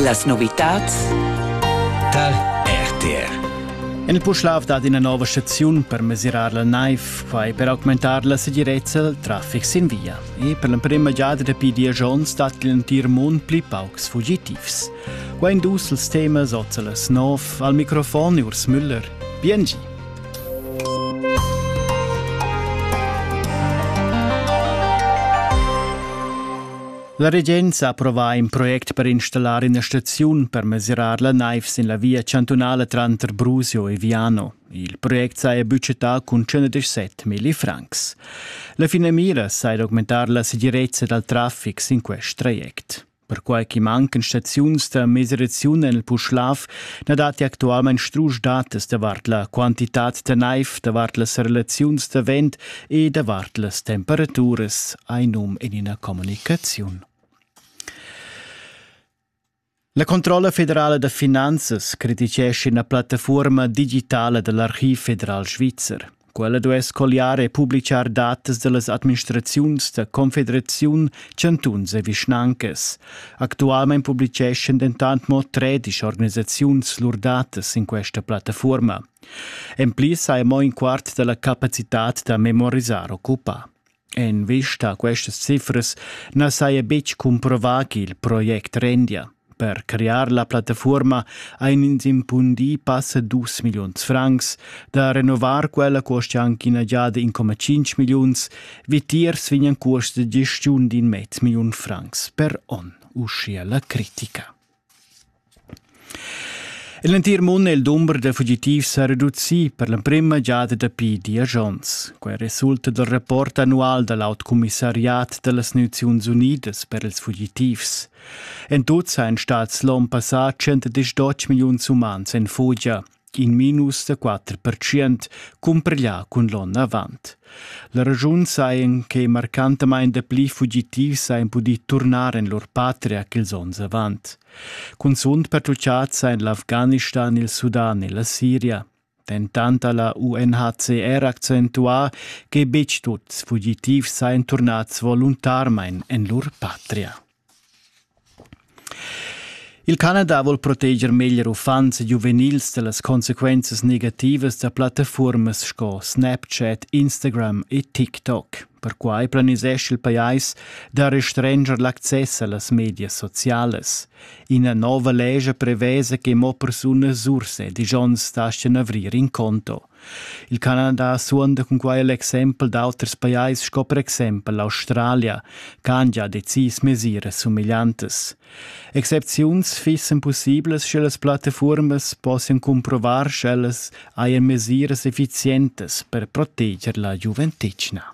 Las novitads tar RTR. En il Puschlav dat ina nova staziun per mesirar la naiv, quai per augmentar la segirezza al traffic sin via. E per l'emprima giada dapi diesch onns dat l'entir mund pli paucs fugitivs. Qua in dus els temas Otzelas Nov al microfon Urs Müller. Biengi! La regenza ha approvà in project per installar ina staziun per mesirar la naiv sin la via chantunala tranter Brusio e Viano. Il project saja budgetà cun 117 milli francs. La finamira sei d'augmentar la segirezza dal traffic sin quest traject. Perquai che mancan staziuns da mesiraziun en il Puschlav, na datti actualmain strusch datas davart la quantitad da naiv, davart las relaziuns da vent e davart las temperaturas hai num en ina communicaziun. La Controlla federala da finanzas criticescha ina plattafuorma digitala da l'Archiv federal svizzer. Quella duess colliare e publicar datas dallas administraziuns da confederaziun, chantuns e vischnancas. Actualmein publiceschan dentant mo tredisch organisaziuns lur datas in questa plattafuorma. En pli sai mo in quart dalla capacitad da memorisar occupà. En vista a questas cifras na saja betg cumprovà ch'il project rendia. Per crear la plattafuorma ein ins impundì passa dus milliuns francs, da renovar quella cuosta anche ina giada in comma cinc milliuns, vitiers vegnan cuosts da gestiun d'in mezz milliun francs per onn, uschia la critica. En l'entir mund è il dumber da fugitivs sa reducì per l'emprima giada dapi diesch onns. Quai resulta dal rapport annual da l'autocommissariat da las Naziuns Unidas per ils fugitivs. En tut sajan stads l'onn passà 110 milliuns umans en fugia. in minus da quatter percent cumpareglià cun l'onn avant. La ragiun sajan che marcantamain dapli fugitivs sajan pudì turnar en lur patria ch'ils onns avant. Cunzunt pertutgads sajan l'Afghanistan, il Sudan e la Siria. Dentant ha la UNHCR accentuà che betg tuts fugitivs sajan turnads voluntarmain en lur patria. Il Canada vul proteger meglier uffants e giuvenils da las consequenzas negativas da plattafuormas sco Snapchat, Instagram e TikTok. Perquai planisesch il pajais da restranger l'access a las medias socialas. Ina nova lescha prevesa che mo persunas urs e digions daschian avrir in conto. Il Canada suonda cun quai l'exempel d'auters pajais sco per exempel l'Australia, ch'han gia decis mesiras sumegliantas. Excepziuns fissen possiblas sche las plattafuormas possian cumprovar sch'ellas hajan mesiras efficientas per proteger la giuventetgna.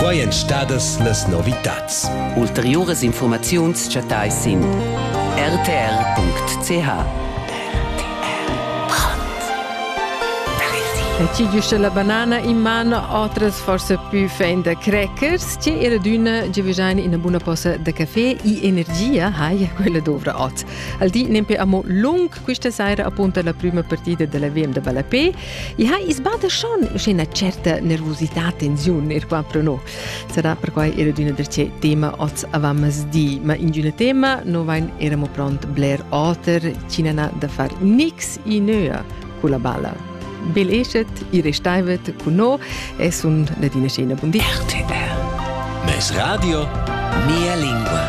Quai èn stadas las novitads. Ulteriuras infurmaziuns chattais sin rtr.ch. Ti giusta la banana in man, otras forse più fin da crackers, ci era d'una givegiane ina buona posa da caffè e energia, hai quella dovra ot. Al di nempe amo lung Questa saira appunta la prima partida della VM da ballapé e ha isbada schon una certa nervosità, tensione, ir qua pro no. Sarà perquai era d'una da ce tema oz avammas di, ma in d'una tema no vain eramo pront bler oter, cinana da far nix i nöa con la balla. Bel eschet, i restaivet con no e sun Nadina Scena. Buon di. RTR. Mes Radio, mia lingua.